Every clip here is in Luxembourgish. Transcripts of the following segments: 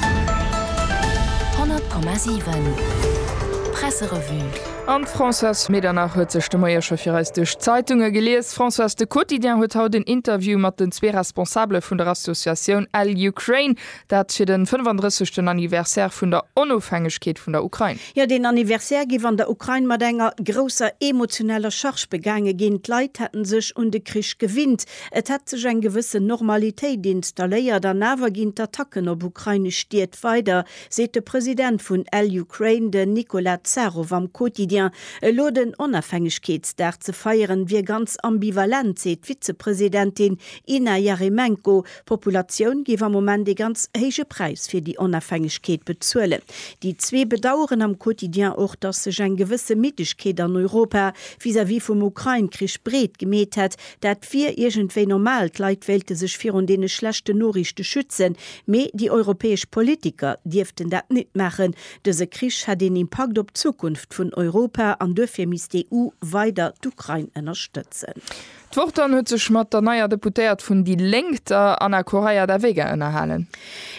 100,7 Presserevue An d'Françoise Medernach huet sech de Moie scho fir eis duerch d'Zeitunge gelies. Françoise, de Quotidien huet haut en Interview mat den zwee Responsabele vun der Associatioun Al Ukraine, dat fir den 35. Anniversaire vun der Onofhängegkeet vun der Ukrain. Jo, deen Anniversaire giff an der Ukrain mat enger grousser emotioneller Charge begaange ginn. D'Leit hätten sech un de Krich gewinnt. Et hätt sech eng gewëssen Normalitéit installéiert an awer ginn d'Attacken op ukrainesch Stied weider, seet de President vun Al Ukraine, den Nicola Zharov am Quotidien. Elo den Onafhängegkeetsdag ze feieren, wier ganz ambivalent, seet d'Vizepresidentin Inna Yaremenko. D'Populatioun géif am Moment ee ganz héije Präis fir déi Onafhängegkeet bezuelen. Déi zwee bedaueren am Quotidien och, datt sech eng gewësse Middegkeet an Europa vis-à-vis vum Ukrain-Krich breet gemeet hätt, Dat wier iergendwéi normal, d'Leit wéilte sech virun deene schlechten Noriichte schützen, mee déi europäesch Politiker dierften dat nit maachen. Dëse Krich hätt een Impakt op d'Zukunft vun Europa an duerfir misst d'EU weider d'Ukrain ënnerstëtzen. D'Wort dann huet sech mat der neier Deputéiert vun déi Lénk, der Ana Correia da Vega ënnerhalen.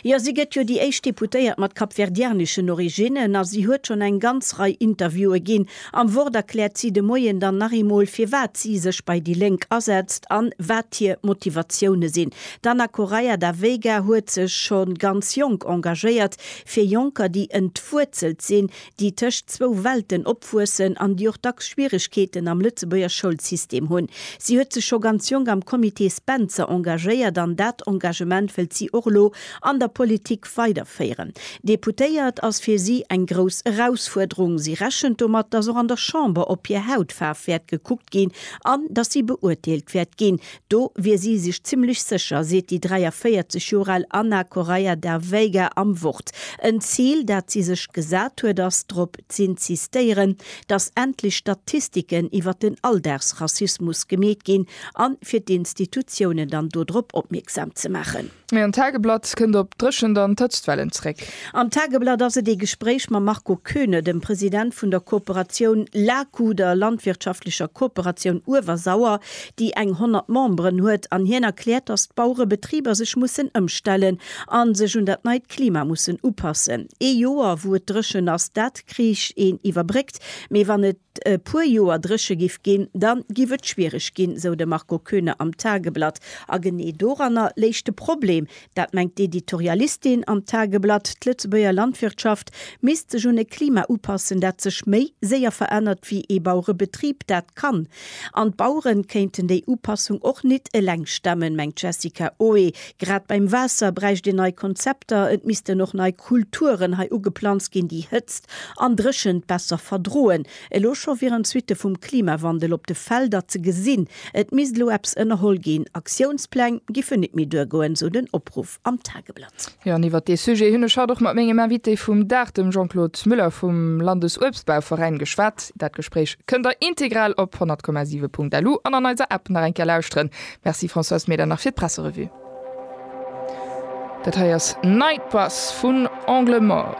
Jo, si gëtt jo déi éischt Deputéiert mat kapverdianeschen Originnen a si huet schonn eng ganz Rei Interviewe ginn, Am Wort erkläert si de Moien dann nach eemol, firwat si sech bei déi Lénk asetzt an wat hir Motivatioune sinn. D'Ana Correia da Veiga huet sech scho ganz jonk engagéiert fir Jonker, déi entwuerzelt sinn, déi tëscht zwou Welten opwuessen an déi och dacks Schwieregkeeten am Lëtzebuerger Schoulsystem hunn. Si huet sech scho ganz jonk am Comité Spencer engagéiert an dat Engagement wëllt si och elo an der Politik Prinzip weiderféieren. Deputéiert ass fir si eng grouss Erausfuerderung. Si rechent domat, datt och an der Chamber op hir Hautfaarf wäert gekuckt ginn an datt si beurteelt wäert ginn. Do wier si sech zimmlech sécher, seet déi 43 Joer al Ana Correia da Veiga am Wort. En Zil, dat si sech gesat huet, ass drop z'insistéieren, datt endlech Statistiken iwwer den Alldagsrassismus gemeet ginn an fir d'Institutiounen dann do drop opmierksam ze maachen. Mee an d'Tageblatt kënnt op d'Dréchent an d'Hëtztwellen zeréck. Am Tageblatt ass et ee Gespréich mam Marco Koeune, dem President vun der Kooperatioun LAKU, der landwirtschaftlecher Kooperatioun Uewersauer, déi eng 100 Memberen huet, an hien erkläert, datt d'Bauerebetriber sech mussen ëmstellen a sech un dat neit Klima mussen upassen. Ee Joer wou et dréchen ass, dat kriicht een iwwerbréckt, mee wann et. e puer Joer dréche giff ginn, da giff et schwiereg ginn, sou de Marco Koeune am Tageblatt. A genee doranner léich de Problem, dat mengt d'Editorialistin am Tageblatt, d'Lëtzebuerger Landwirtschaft misst sech un e Klima upassen, dat sech méi séier verännert wéi ee Bauerebetrib dat kann. An d'Bauere kéinten déi Upassung och nit eleng stemmen, mengt d'Jessica Oe, Grad beim Waasser bräicht een nei Konzepter. Et missten och nei Kulturen hei ugeplanzt ginn, déi Hëtzt an Dréchent besser verdroen. Elo scho wieren d'Suitte vum Klimawandel op de Felder ze gesinn. Et misst elo eppes ënnerholl ginn. Aktiounspläng géifen nit méi duergoen, sou den Opruff am Tageblatt. Jo, an iwwert dee Sujet hunn ech haut och mat mengem Invité vum Dag, dem Jean-Claude Muller vum Landesuebstbauveräin, geschwat. Dat Gespréich kënnt der integral op 100,7.lu an an eiser App nach eng Kéier lauschteren. Merci Françoise, mee dann nach fir d'Presserevue. Dat hei ass Night Bus vun Angle Mort.